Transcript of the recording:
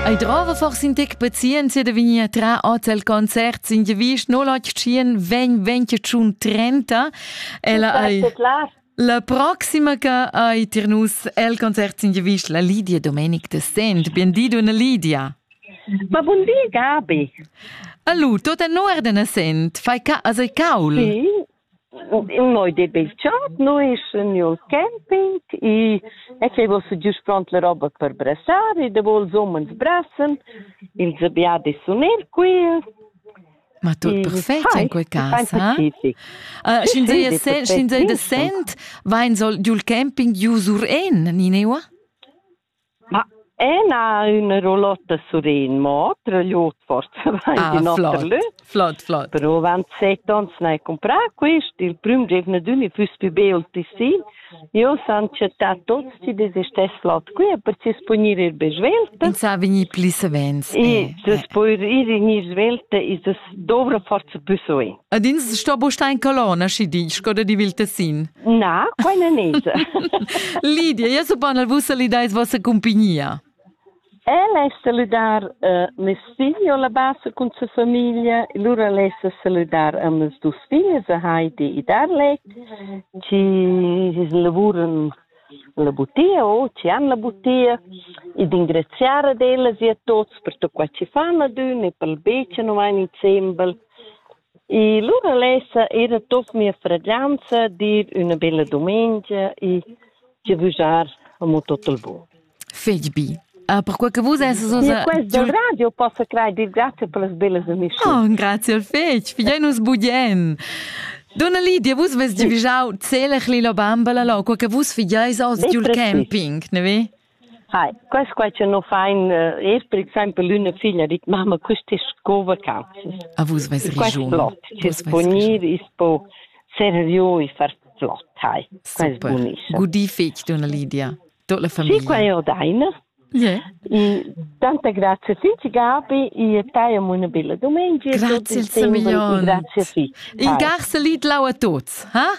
Ei drava forse in tec pazienza da vegnir tra oz al concert sin de Visch no latg tschien vegn venti tschun trenta. Ella ei la proxima che ei tir nus el concert sin de Visch la Lidia Domenic de Sent. Bien di una Lidia. Ma bun di Gabi. Allo, tot en ordine sent, fai ca as ei caul. Sì, Noi de Belchat, noi nel camping e e che vos giust pront la roba per brassar e de vols homens brassen, ils abia de sunir qui. Ma tot perfect in quei casa. Uh, Sch'in di de sent, vain soll giul camping giu sur en, Nineua? Ma Ena ün rollota suren, mo otra lut forsa vain ah, in oter lö. Flot, flot. Però avant set ons n'hai cumprà quist, il prüm giuvnadün i füss pü be ul tissin. Io san chattà tuots chi desistess flot qui e precis punir ir be svelta. In sa vegnir pli savens. E eh, eh. poir ir in ir svelta e das dovra forza pü soin. Ed ins sto bustar in colonna, schi di, sco da di vil tessin. Na, quai non es. Lidia, io so pan al vus salidais vossa compagnia. El es saludar uh, mes figli o la bassa cun sa famiglia, lura les saludar a mes dus figli, a Heidi e Darlek, ci lavuran la butia o ci han la butia e d'ingraziare ad elles e a tutti per tutto qua ci fanno d'un e per il beccio non vai in sembel. E lura lessa ir atop mia fraglianza dir üna bella dumengia e giavüschar amo tot il bun. Fetg bi. Uh, perquei che vus esses uns... E questo radio possa creare dir grazie per las bellas amici. Oh, grazie al fetg, figliai nus budien. Donna Lidia, vus vest giavüschau zelech lila bamba la lo, quei che vus figliais oz giul camping, ne vi? Hai, quest quai cha no fain es per exaimpel l'üna figlia dit mamma quist es sco vacanzas. A vus vais rigiun. Flot, chi's po gnir, i's po servü e far flot, hai. Quest bunischa. Gudì fich, donna Lidia. Tot la famiglia. Sì, qua io daina. Yeah. Tanta grazie figli Gabi e taiam una bella domenica. Grazie il Semiglion. Grazie figli. In garselit lau a tuts, ha?